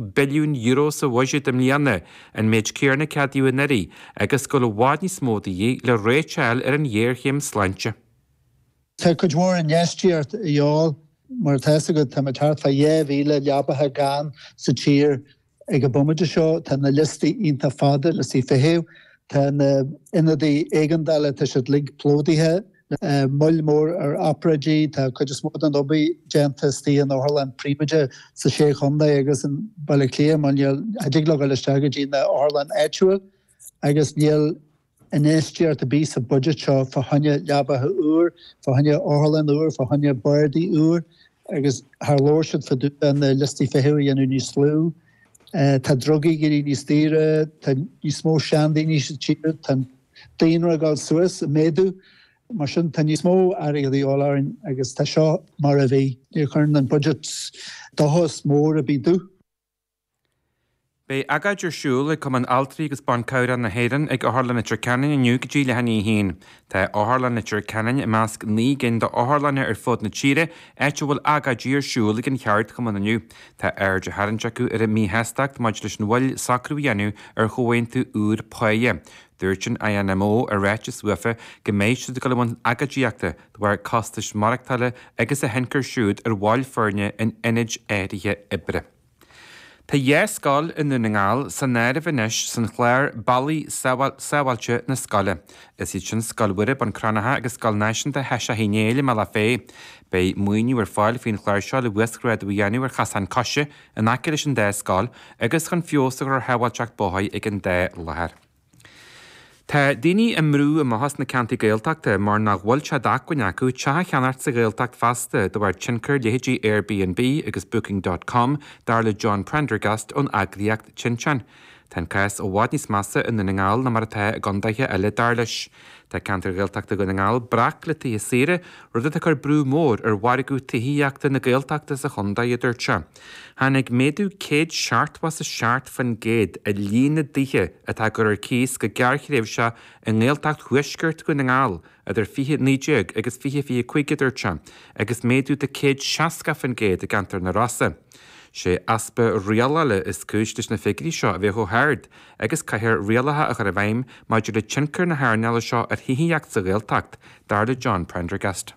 billiún euro sa bhuiséad i mbliana, an méid céanna a ceadaíodh anuraidh, agus go bhfuil i bhfad níos mó de dhíth le réiteáil ar an ghéarchéim sláinte. Tá cuid mhór infheistíocht de dhíobháil. Mar atá fhios agat, tá muid thart fá dhá mhíle leabaithe gann sa tír ag an bhomaite seo. Tá na liostaí iontach fada, liostaí feithimh. Tá na hionadaí éigeandála, tá siad uilig plódaithe. Moill mór ar obráidí. Tá cuid is mó de na hobráidí déanta istigh in otharlanna príobháideach sna Sé Chontae agus i mBaile Átha Cliath mar níl, cha dtig leo dul isteach go dtí na hotharlanna áitiúil agus níl infheistíocht ar bith sa budget seo fá choinne leabaithe úr, fá choinne otharlann úr, fá choinne bardaí úr agus cha labhair siad fá dtaobh de na liostaí feithimh a dhéanamh níos lú. Tá drugaí ag éirí níos daoire, tá níos mó seandaoine sa tír, tá an. daonra ag dul suas, ag méadú, mar sin tá níos mó airgid de dhíobháil orainn agus tá seo mar a bhí. Níor thug an budget dóchas mór ar bith domh. Beidh agóid ar siúl ag Cumann Altraí agus Ban Cabhrach na hÉireann ag Otharlann Leitir Ceanainn inniu idir leath i ndiaidh a haon. Tá Otharlann Leitir Ceanainn i measc naoi gcinn d'otharlanna ar fud na tíre áit a bhfuil agóidí ar siúl ag an cheardchumann inniu. Tá aird á tharraingt acu ar a míshástacht maidir leis an mhoill socrú a dhéanamh ar chomhaontú úr páighe. Dúirt an INMO i ráiteas uafa go mbeidh siad ag dul i mbun agóidíochta de bharr costais mhaireachtála agus an tionchar siúd ar bhaill foirne in ionaid áirithe oibre. Tá dhá scoil i nDún na nGall san áireamh anois san chlár Bealaí Sábháilte chun na Scoile. Is iad sin Scoil Mhuire, Bun Cranncha agus Scoil Náisiúnta Sheiseadh Uí Néill i mBealach Féich. Beidh maoiniú ar fáil faoin chlár seo le huasghrádú a dhéanamh ar chasáin coise, in aice leis an dá scoil agus chun feabhas a chur ar shábháilteacht bóthair ag an dá láthair. Tá daoine á mbrú amach as na ceantair Gaeltachta mar nach bhfuil sé d'acmhainn acu teach a cheannacht sa Ghaeltacht feasta de bharr tionchar leithéidí Airbnb agus Booking dot com, dar le John Prendergast ón eagraíocht Tinteán. Tá an cás i bhfad níos measa i nDún na nGall ná mar atá i gcondaetha eile, dar leis. Tá ceantair Ghaeltachta Dhún na nGall breac le tithe saoire, rud atá ag cur brú mór ar mhargadh tithíochta na Gaeltachta sa chondae, a dúirt sé. Tháinig méadú céad seachtmhó is a seacht fan gcéad ar líon na dtithe atá á gcur ar cíos go gearrthréimhseach i nGaeltacht Thuaisceart Dhún na nGall idir 20, 19 agus 20, 25 a dúirt sé, agus méadú de 160% i gceantar na Rosa. 'Sé easpa rialála is cúis leis na figiúirí seo a bheith chomh hard agus caithfear rialacha a chur i bhfeidhm maidir le tionchar na hearnála seo ar thithíocht sa Ghaeltacht, dar le John Prendergast.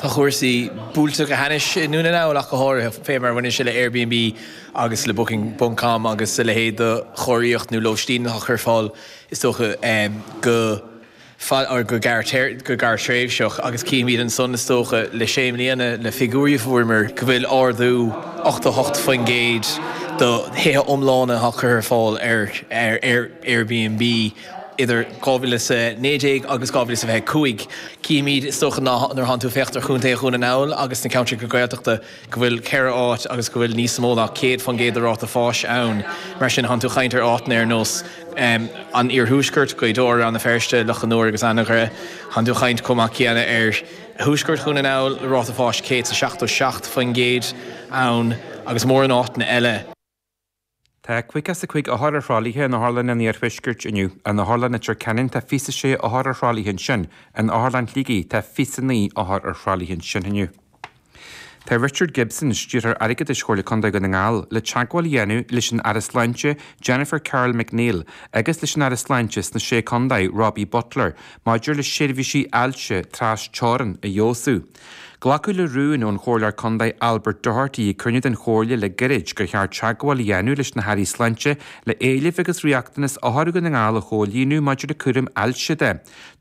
Tá cúrsaí buailte go hainnis i nDún na nGall ach go háirithe, fé mar a bhaineann sé le Airbnb agus le Booking ponc com agus a leithéid de chóiríocht nó lóistín atá curtha ar fáil is dócha go, go, go gearrthréimhseach agus cífimid ansan is dócha le sé mbliana le figiúirí a fuaireamar go bhfuil ardú 88% do thithe iomlána atá curtha ar fáil ar Airbnb. idir 2019 agus 2025. Címid, is dócha, ná nuair a thánn tú ag féachaint ar chontae Dhún na nGall agus na ceantracha Gaeltachta go bhfuil ceithre áit agus go bhfuil níos mó ná 100% de ráta fáis ann. Mar sin, thánn tú ag caint ar áiteanna ar nós an iarthuaisceart, Gaoth Dobhair, Rann na Feirste, Loch an Iúir agus Anagaire. Thánn tú ag caint chomh maith céanna ar thuaisceart Dhún na nGall, le ráta fáis 177% ann, agus mórán áiteanna eile. Tá caoga is a cúig othar ar thralaithe in otharlanna an Iarthuaiscirt inniu. In Otharlann Leitir Ceanainn tá fiche is a sé othar ar thralaithe ansin. In Otharlann Shligigh tá fiche is a naoi othar ar thralaithe ansin inniu. Tá Richard Gibson, Stiúrthóir Airgeadais Chomhairle Condae Dhún na nGall, le teagmháil a dhéanamh leis an Aire Sláinte, Jennifer Carroll MacNeill, agus leis an Aire Sláinte sna Sé Condae, Robbie Butler, maidir le seirbhísí ailse trasteorann a fheabhsú. Glacadh le rún ón Chomhairleoir Contae Albert Doherty ag cruinniú den Chomhairle le gairid gur cheart teagmháil a dhéanamh leis na hAirí Sláinte le éilimh agus riachtanas othair Dhún na nGall a chomhlíonadh maidir le cúram ailse de.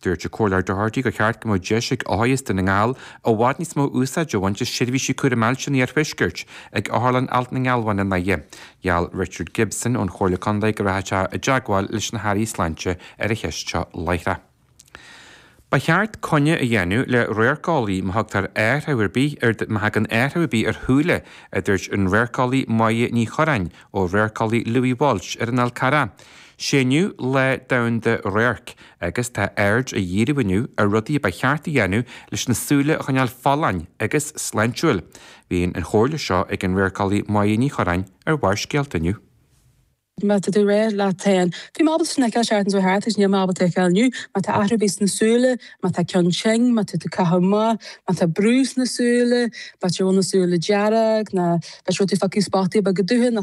Dúirt an Comhairleoir Doherty gur cheart go mbeadh deis ag othair Dhún na nGall i bhfad níos mó úsáid a bhaint as seirbhísí cúram ailse an iarthuaiscirt ag Otharlann Alt na nGealbhan i nDoire. Gheall Richard Gibson ón Chomhairle Contae go rachadh sé i dteagmháil leis na hAirí Sláinte ar an cheist seo láithreach. Ba cheart coinne a dhéanamh le radharceolaí má thugtar athrú ar bith ar, má thagann athrú ar bith ar shúile, a dúirt an radharceolaí Moya Ní Chuireáin ó radharceolaí Louis Walsh ar an Fhál Carrach. Sé inniu Lá Domhanda Radhairc agus tá aird á dhíriú inniu ar rudaí a ba cheart a dhéanamh leis na súile a choinneáil folláin agus sláintiúil. Bhí an chomhairle seo ag an radharceolaí Moya Ní Chuireáin ar Bharrscéalta inniu. Má tá tú ag rá leat féin, bhí mé ábalta sin a fheiceáil, an tseachtain seo a chuaigh thart agus níl mé ábalta a fheiceáil inniu, má tá athrú ar bith sna súile, má tá ceann tinn, má tá tú ag caitheamh amach, má tá brú sna súile, b'fhéidir go bhfuil na súile dearg, ná b'fhéidir go bhfuil tú ag feiceáil spotaí beaga dubha, ná